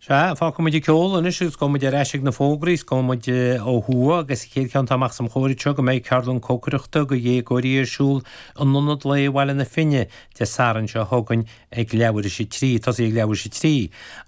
Sea, fágfaidh muid an ceol anois agus gabhfaidh muid ar ais ag na fógraí is gabhfaidh muid eh, ó thuaidh agus an chéad cheann atá amach os mo chomhair anseo go mbeidh ceardlann cócaireachta go dhéagóirí ar siúl in Ionad Lae Bhaile na Finne Dé Sathairn seo chugainn ag leathuair thar éis a trí, tosaí ag leathuair thar éis a trí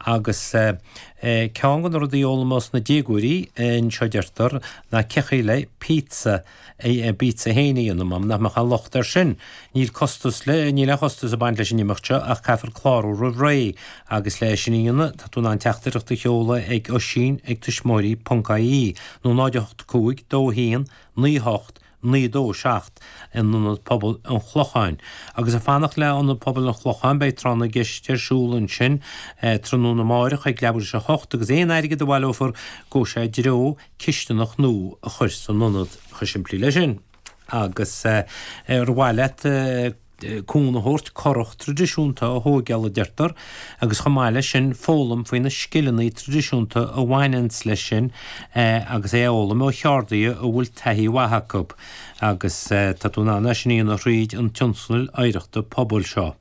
agus eh, eh, ceann de na rudaí a fhoghlaimeos na déagóirí eh, anseo deirtear ná cén chaoi le pizza. é pizza féin a dhéanamh. Má nach mbeadh aon locht air sin, níl costas le, níl aon chostas ag baint leis an imeacht seo ach caithfear clárú roimh ré agus le é sin a dhéanamh tá tú in ann teachtaireacht a sheoladh ag Oisín ag tuismitheoirí ponc ie nó 08 5 2 1 9 8 9 2 7 in Ionad Pobail an Chlocháin agus ag fanacht le Ionad Pobail an Chlocháin beidh Tráth na gCeist ar siúl ansin tráthnóna amárach ag leathuair thar éis a hocht agus aon airgead a bhaileofar gabhfaidh sé i dtreo cisteanach nua a chur san ionad. Chomh simplí leis sin. Agus ar mhaith leat cúnamh a thabhairt currach tradisiúnta a thóigeáil a deirtear, agus chomh maith leis sin foghlaim faoi na scileanna tradisiúnta a bhaineanns leis sin agus é a fhoghlaim ó cheardaithe a bhfuil taithí mhaith acu. Agus tá tú in ann é sin a dhéanamh thríd an tionscadal oidhreachta pobail seo.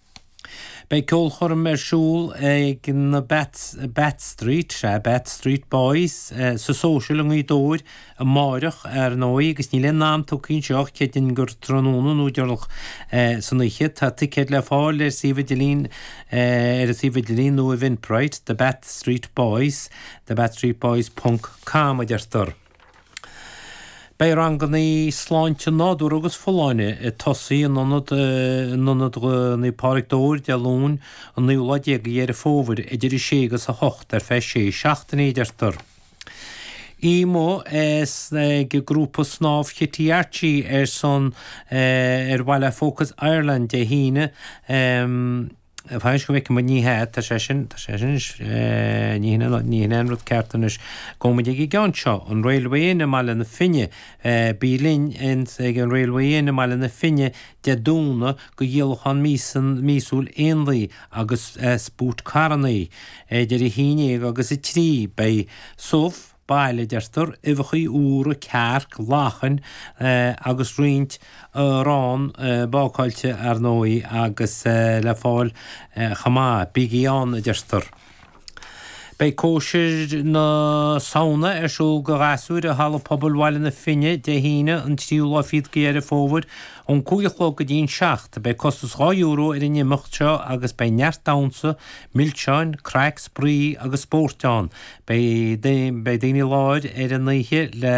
Beidh ceolchoirm ar siúl ag na Bath Street, sea, Bath Street Boys, sa Social i nGaoth Dobhair amáireach, ar ndóigh, agus níl aon am tugtha anseo ach creidim gur tráthnóna nó deireanach san oíche. Tá ticéid le fáil ar suíomh idirlín ar an suíomh idirlín nó Eventbrite, The Bath Street Boys, thebathstreetboys ponc com, a deirtear. Beidh ranganna sláinte nádúr agus folláine ag tosaí in Ionad in Ionad Naomh Pádraig Dobhar, Dé Luain, an naoú lá déag de Dheireadh Fómhair, idir a sé agus a hocht ar feadh sé seachtaine, a deirtear. Oíche amuigh ag grúpa Snámh Chití Archie ar son ar mhaithe le Focus Ireland Dé hAoine. Fan go bhfeicimid Ní hea, tá sé sin, tá sé sin anois, ní hin an, ní hin an rud ceart anois gabhfaidh muid ag an gceann seo, an Railway Inn i mBaile na Finne, bí linn in, ag an Railway Inn i mBaile na Finne Dé Domhnaigh go dhíolachán míosan, míosúil éanlaithe agus as búit carrannaí, idir a haon dhéag agus a trí, beidh subh, baile, deirtear, uibheachaí úra, cearc, lachain agus roinnt arán bácáilte, ar ndóigh, agus le fáil chomh maith. Bígí ann, a deirtear. Beidh cóisir na Samhna ar siúl do ghasúir i Halla Pobail Bhaile na Finne Dé hAoine an 3ú lá fichead go Dheireadh Fómhair ón cúig a chlog go dtí an seacht. Beidh costas dhá euro ar an imeacht seo agus beidh neart damhsa, milseáin, craic, spraoi agus spóirt ann. Beidh daoine i láthair ar an oíche le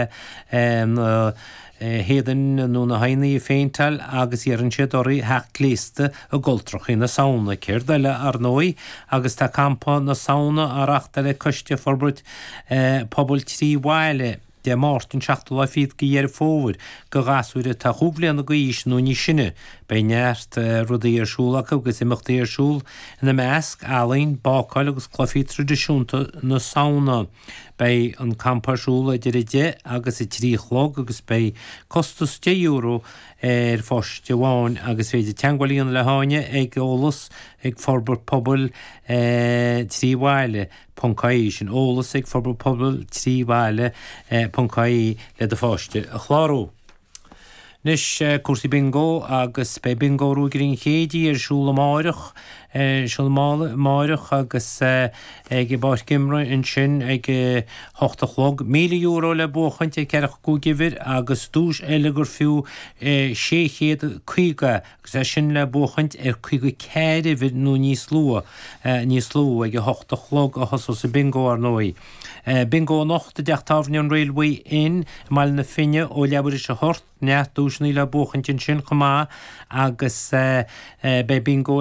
na héadain nó na haghaidheanna a phéinteáil agus iarrann siad oraibh theacht gléasta i gcultrachaí na Samhna, céard eile ar ndóigh, agus tá Campa na Samhna á reachtáil ag Coiste Forbairt Pobail Trí Bhaile. Dé Máirt, an 7ú lá fichead de Dheireadh Fómhair, do ghasúir atá chúig bhliana d'aois nó níos sine. Beidh neart rudaí ar siúl acu agus imeachtaí ar siúl, ina measc, ealaín, bácáil agus cluichí tradisiúnta na Samhna. Beidh an campa ar siúl idir 10 agus 3 a chlog agus beidh costas 10 euro ar pháiste amháin agus is féidir teagmháil a dhéanamh le hÁine ag, eolas, ag Forbairt Pobail trí bhaile. ponc ie sin eolas ag forbairt pobail trí bhaile ponc ie le do pháiste a chlárú. Anois cúrsaí Bingo agus beidh Bingo Ruagairí an Chéididh ar siúl amáireach, siúl amáireach agus ag i bpáirc imeartha ansin ag a hocht a chlog. Míle euro le buachaint ar ceathracha cúig uimhir agus duais eile gur fiú sé chéad caoga agus é sin le buachaint ar 54 uimhir nó níos lú, níos lú ag a hocht a chlog a thosós an Bingo, ar ndóigh. Bingo anocht i dTeach Tábhairne an Railway Inn i mBaile na Finne ó leathuair tar éis a hocht, neart duaiseanna le buachaint ansin chomh maith agus beidh Bingo